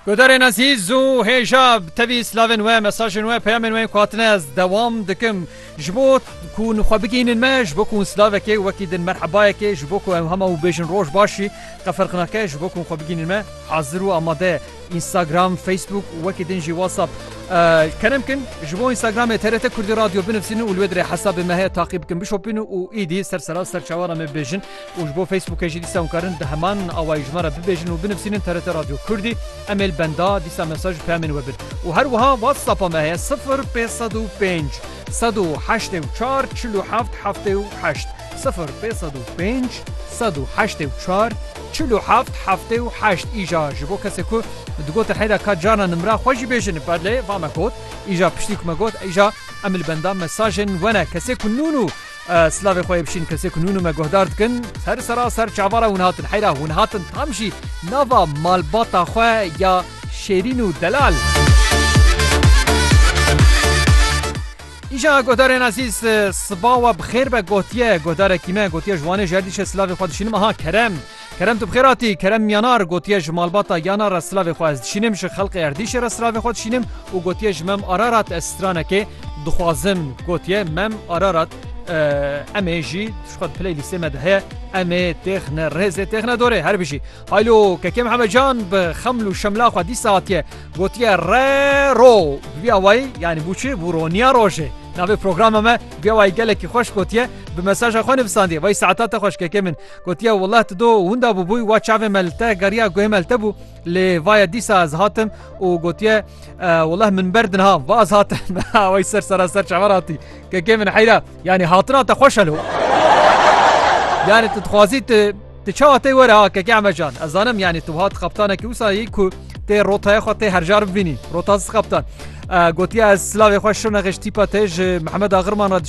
Guhdarên ezîz û hêja tevî slavên we, mesajên we, peyamên we yên ku hatine ez dewam dikim. Ji bo ku xwe bigihînin me, ji bo ku hûn slavekê wekî din merhebayekê, ji bo ku em hema wî bêjin roj başî, qefirqinake, ji bo ku hûn xwe bigihînin me hazir û amade ye. Înstagram, Facebook û wekî din jî WhatsApp kerem bikin. Ji bo Înstagramê TRT Kurdî Radio binivîsînin û li wê dirê hesabê me heye taqî bikin, bişopînin û êdî ser sera ser çawana me bibêjin. û ji bo Facebookê jî dîsa hûn karin di heman awayî ji me re bibêjin û binivsînin TRT Radyo Kurdî, emêl benda, dîsa mesaj û peyamên we bin. Û her wiha WhatsAppa me heye sifir pênc sed û pênc sed û heştê û çar çil û heft heftê û heşt, sifir pênc sed û pênc sed û heştê û çar çil û heft heftê û heşt. Îja ji bo kesê ku digotin heyra ka carna nimra xwe jî bêjin belê va me got, îja piştî ku me got îja emêl benda mesajên we ne, kesê ku nûn û. Silavê xwe yê bişîn kesê ku nûnû me guhdar dikin. Ser sera ser çavara hûn hatin. Heyra hûn hatin tam jî nava malbata xwe ya Şêrîn û Delal. Îja guhdarên ezîz siba we bi xêr be gotiye guhdarekî me gotiye ji Wanê ji erdîşê silavê xwe dişînim aha kerem Kerem tu bi xêr hatî. Kerem Miyanar gotiye ji malbata Yana re silavê xwe ez dişînim, ji xelqê Erdîşê re silavê xwe dişînim û gotiye ji Mem Ararat ez stranekê dixwazim. Gotiye Mem Ararat em ê jî ji xwe di piley lîstê me de heye em ê têxine rêzê têxine dorê. Her bijî. Haylo Kekê Mihemed Can bi xeml û şemla xwe dîsa hatiye gotiye re ro bi vîya wayî yanî bû çi bû roniya rojê. Navê programa me bi vîya wayî gelekî xweş gotiye bi mesaja xwe nivisandiye. Vay saeta te xweş Kekê min. Gotiye wela tu do winda bûbûy wa çavê me li te geriya guhê me li te bû lê vaye dîsa ez hatim û gotiye weleh min ber dinha va ez hatim wey ser sera ser çaver hatî kekê min heyra yanî hatina te xweş helo yanî tu dixwazî tu Tu çawa tê were ha keke emecan Ez zanim yanî tu hat qaptanekî wisa yî ku tê rotaya xwe tê herjar bivînî rota qaptan gotiye ez silavê xwe şirnexêj tîpa te ji Mehmed Agirman re dişî